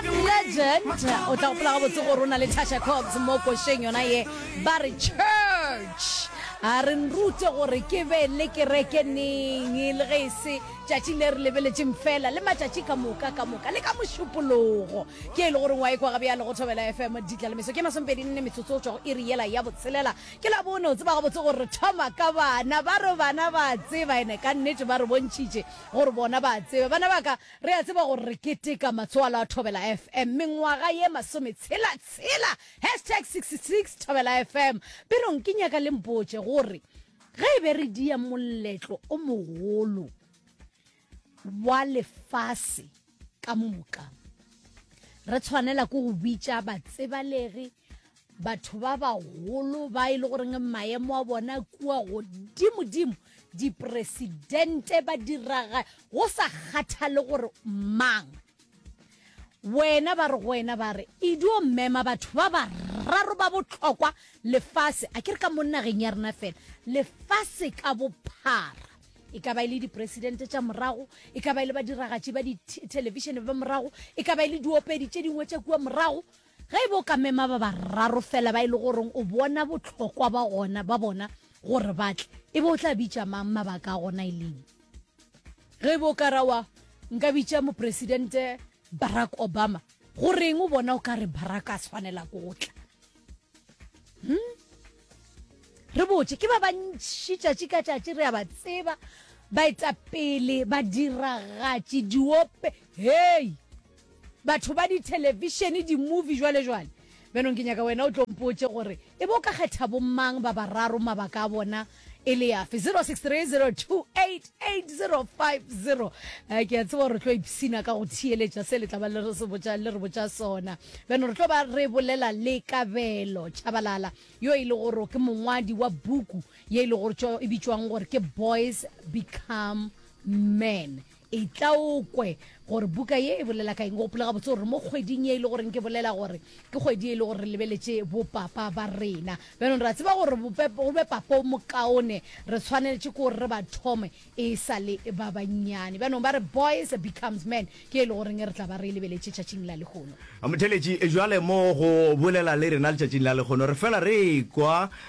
Legend, o tla gopola gabotse gore o na le Tasha Cobbs mo košeng yona ye. Ba re church a re nrute gore ke be le kereke neng le ge e se tšatšing le re lebeletšeng fela le matšatši ka moka ka moka le ka mošupologo ke e le goreng wa ekwa gabjalo go thobela fm ditlalemeso ke masomepedi nne metsotso go tšwa go iri yela ya botshelela ke la bone o tseba gabotse gore re thoma ka bana ba re bana ba tseba ene ka nnete ba re bontšhitše gore bona ba tseba bana ba ka Re a tseba gore re keteka Matsoalo a Thobela FM mengwaga ye masometshela tshela, hashtag 66 Thobela FM. Perong ke nyaka le mpotše gore ge e be re dia moletlo o mogolo wa lefase ka moka, re tshwanela ke go bitša batsebalegi, batho ba bagolo ba e le goreng maemo a bona kua godimodimo dipresidente ba diraga go sa kgathale gore mang wena ba re go wena ba re e dio mmema batho ba bararo ba botlhokwa lefase a ke re ka mo nageng ya rena fela lefase ka bophara e ka ba e le dipresidente tša morago e ka ba e le badiragatši ba dithelevishene ba morago e ka ba e le diopedi tše dingwe tša kua morago Ge e be o ka mema ba bararo fela ba e le goreng o bona bohlokwa ba gona ba bona gore ba tle, e be o tla bitša mang, mabaka a gona e leng? Ge e be o ka ra wa, Nka bitša Mopresidente Barack Obama. Goreng o bona o ka re Barack a swanela ke go tla? Hum? Re botše, ke ba bantši tšatši ka tšatši re a ba tseba, baetapele, badiragatši, diope, hei! Batho ba dithelefishene, dimovie, jwalejwale. Bjanong ke nyaka wena o tlo mpotše gore e be o ka kgetha bommang ba bararo, mabaka a bona e le afe? 0630288050. Ke a tseba gore re tlo ipshina ka go theeletša se le tla ba le re se botša, le re botša sona. Bjanong re tlo ba re bolela le Kabelo Tshabalala yo e le gore ke mongwadi wa buku ye e le gore e bitšwang gore ke Boys Become Men. Etla o kwe gore buka ye e bolela ka eng. Gopola gabotse gore mo kgweding ye e le goreng ke bolela gore ke kgwedi ye e le gore re lebeletše bopapa ba rena. Bjanong re a tseba gore go be papa o mokaone re tshwaneletše ke gore re ba thome e sa le ba bannyane. Bjanong ba re Boys Becomes Men ke ye e le goreng re tla ba re e lebeletše tšatšing la lehono. Motheeletši, Bjale mo go bolela le rena letšatšing la lehono re fela re ekwa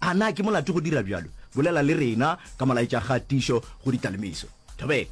A na ke molato go dira bjalo? Bolela le rena ka molaetšagatišo go ditalimiso. Thobela.